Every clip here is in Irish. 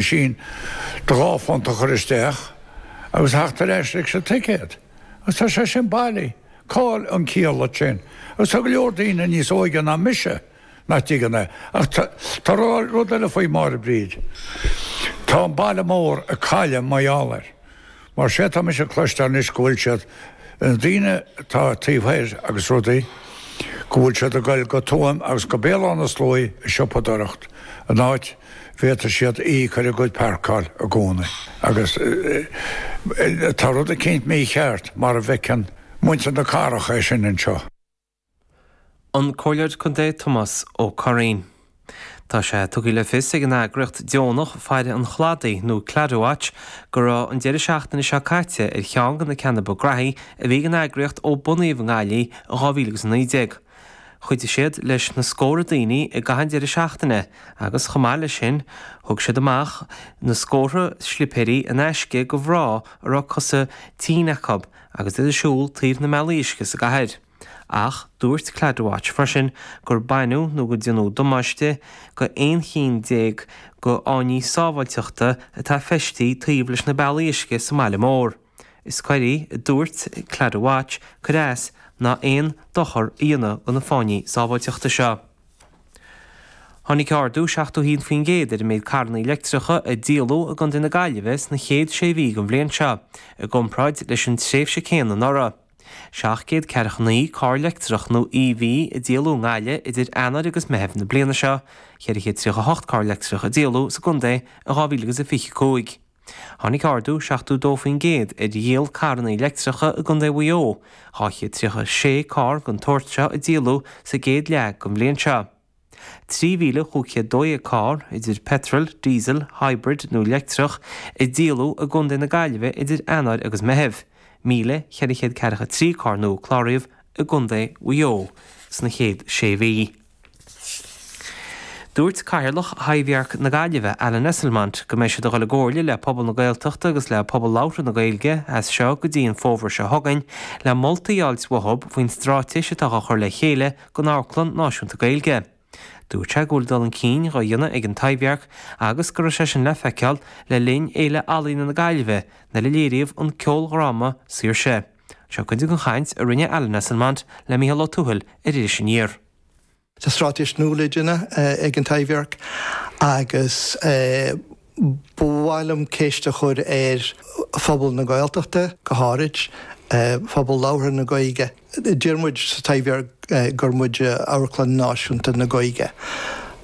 machine do dhá phunt a chur isteach agus a theacht ar ais leis an ticéad agus tá sé sin bailí. Cá'il an ciall leis sin? Agus tá go leor daoine níos óige ná mise nach dtuigeann é. Ach tá rud eile faoi, a Mháire Bríd. Tá an baile mór ag cailleadh mar gheall air. Mar tá mise ag cloisteáil anois go bhfuil siad, na daoine atá taobh thoir agus rudaí, go bhfuil siad ag goil go Tuaim agus go Béal Átha na Sluaighe ag siopadóireacht, an áit a bhféadfaidh siad íoc ar a gcuid páirceáil i gcónaí. Agus tá rud eicínt mícheart, mara bhfeiceann muintir na cathrach é sin anseo. An Comhairleoir Contae Tomás Ó Curraoin. Tá sé tugtha le fios ag an eagraíocht dheonach Faire an Chladaigh nó Claddagh Watch go raibh an deireadh seachtaine seo caite ar cheann de na ceanna ba graithí a bhí ag an eagraíocht ó bunaíodh í i nGaillimh in 2019. Chuidigh siad leis na scórtha daoine i gcaitheamh an deireadh seachtaine agus chomh maith leis sin thug siad amach na scórtha slipéirí in aisce go mhná a raibh cosa tinne acu. agus iad ag siúl taobh le na bealaí uisce sa gcathair. Ach dúirt Claddagh Watch freisin gur baineadh nó gur déanadh damáiste go 11 chinn go fháinní sábháilteachta atá feistithe taobh leis na bealaí uisce sa mbaile mór. Is coir í, a dúirt Claddagh Watch, cur as nó aon dochar a dhéanamh do na fáinní sábháilteachta seo. Tháinig ardú 71% ar an méid carranna leictreacha a díoladh i gContae na Gaillimhe sna chéad sé mhí den bhliain seo i gcomparáid leis an tréimhse chéanna anuraidh. Seacht gcéad ceathracha naoi carr leictreach nó EV a díoladh i nGaillimh idir Eanáir agus Meitheamh na bliana seo, cheithre chéad tríocha hocht carr leictreach a díoladh sa gcontae in 2025. Tháinig ardú 72% ar dhíol carranna leictreacha i gContae Mhaigh Eo, 236 carr den tsórt seo a díoladh sa gcéad leath den bhliain seo. 3,512 carr, idir petrol, diesel, hybrid nó leictreach, a díoladh i gContae na Gaillimhe idir Eanáir agus Meitheamh, 1,443 carr nua a cláraíodh i gContae Mhaigh Eo sna chéad sé mhí. Dúirt Cathaoirleach Thaibhdhearc na Gaillimhe, Alan Esslemont, go mbeidh siad ag dul i gcomhairle le pobal na Gaeltachta agus le pobal labhartha na Gaeilge as seo go dtí an fómhar seo chugainn le moltaí a fháilt uathu faoin stráitéis atá á chur le chéile don amharclann náisiúnta Gaeilge. Dúirt sé go bhfuil dul chun cinn dhá dhéanamh ag an Taibhdhearc agus go raibh sé sin le feiceáil le linn Fhéile Ealaíona na Gaillimhe nuair a léiríodh an ceoldhráma Saoirse? Seo cuid den chaint a rinne Alan Esslemont le Micheál Ó Tuathail ar Iris Aniar. Tá stráitéis nua le déanamh ag an Taibhdhearc agus ba mhaith liom ceist a chur ar phobal na Gaeltachta go háirid, pobal labhartha na Gaeilge. Deir muid sa Taibhdhearc gur muid Amharclann Náisiúnta na Gaeilge.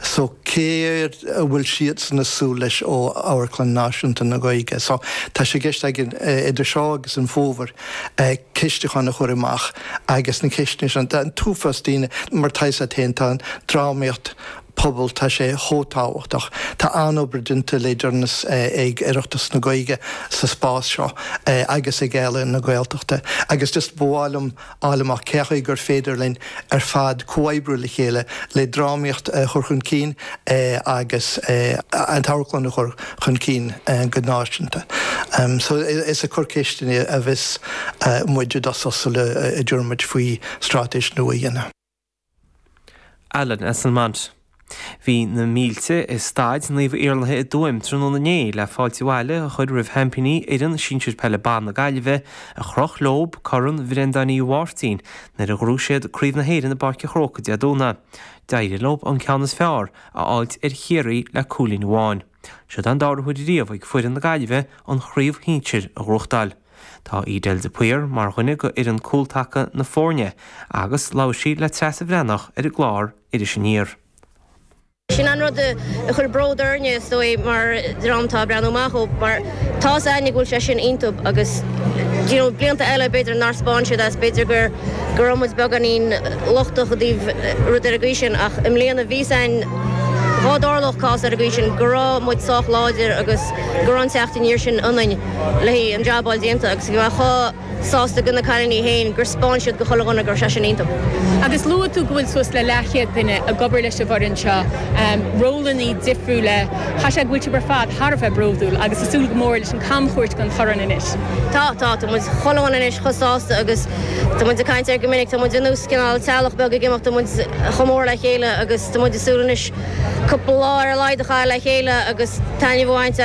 So céard a bhfuil siadsan ag súil leis ó Amharclann Náisiúnta na Gaeilge? So tá sé i gceist againn idir seo agus an fómhar ceistiúchán a chur amach agus na ceisteanna sin, tá an t-uafás daoine, mar atá fhios a't fhéin, tá an drámaíocht pobail, tá sé chomh tábhachtach, tá an-obair déanta le deireanas ag Oireachtas na Gaeilge sa spás seo agus ag Ealaín na Gaeltachta agus just ba mhaith liom, fháil amach cén chaoi gur féidir linn ar fad comhoibriú le chéile le drámaíocht a chur chun cinn agus an t-amharclann a chur chun cinn go náisiúnta. So is ag cur ceisteanna a bheas muid i dtosach sula dtabharfaimid faoi straitéis nua a dhéanamh. Alan Esslemont. Bhí na mílte i Staid Naomh Iarlaithe i dTuaim tráthnóna inné le fáilte abhaile a chur roimh sheaimpíní fhoireann sinsir peile ban na Gaillimhe a chroch leob corn Bhrendan Uí Mháirtín nuair a ghnóthaigh siad Craobh na hÉireann i bPáirc an Chróca Dé Domhnaigh. D'éirigh leob an ceann is fearr a fháilt ar Chiarraí le cúilín amháin. Siod an dara huair riamh ag foireann na Gaillimhe an chraobh shinsir a ghnóthachtáil. Tá Edel de Paor mar dhuine de fhoireann cúltaca na foirne agus labhair sí le Treasa Bhreathnach ar an gclár Iris Aniar. Sin an rud a chuir bród orainne is dóigh mar dream atá ag breathnú amach ó mar tá's againne go bhfuil sé sin iontub agus you know blianta eile b'fhéidir nár spáin siad é agus b'fhéidir gur go raibh muid beagáinín lochtach i dtaobh rud ar an gcaoi sin ach i mbliana bhí fhios a'inn, dhá dtarlódh cás ar an gcaoi sin, go raibh muid sách láidir agus go raibh an teacht aniar sin ionainn le haghaidh an jab fháil déanta agus bhí mé chomh sásta go na cailíní féin gur 'speáin siad go chuile dhuine go raibh sé sin iontub. Agus luaigh tú go bhfuil suas le leathchéad duine ag obair leis an bhfoireann seo, rólannaí difriúla, caithfidh sé go bhfuil sibh ar fad thar a bheith bródúil agus ag súil go mór leis an camchuairt den Chorn anois. Tá, tá. Tá muid chomh lán anois, chomh sásta agus tá muid ag caint air go minic. Tá muid ar nós cineál teaghlach beag ag imeacht, tá muid chomh mór le chéile agus tá muid ag súil anois cúpla lá ar a laghad a chaitheamh le chéile agus taitneamh a bhaint as.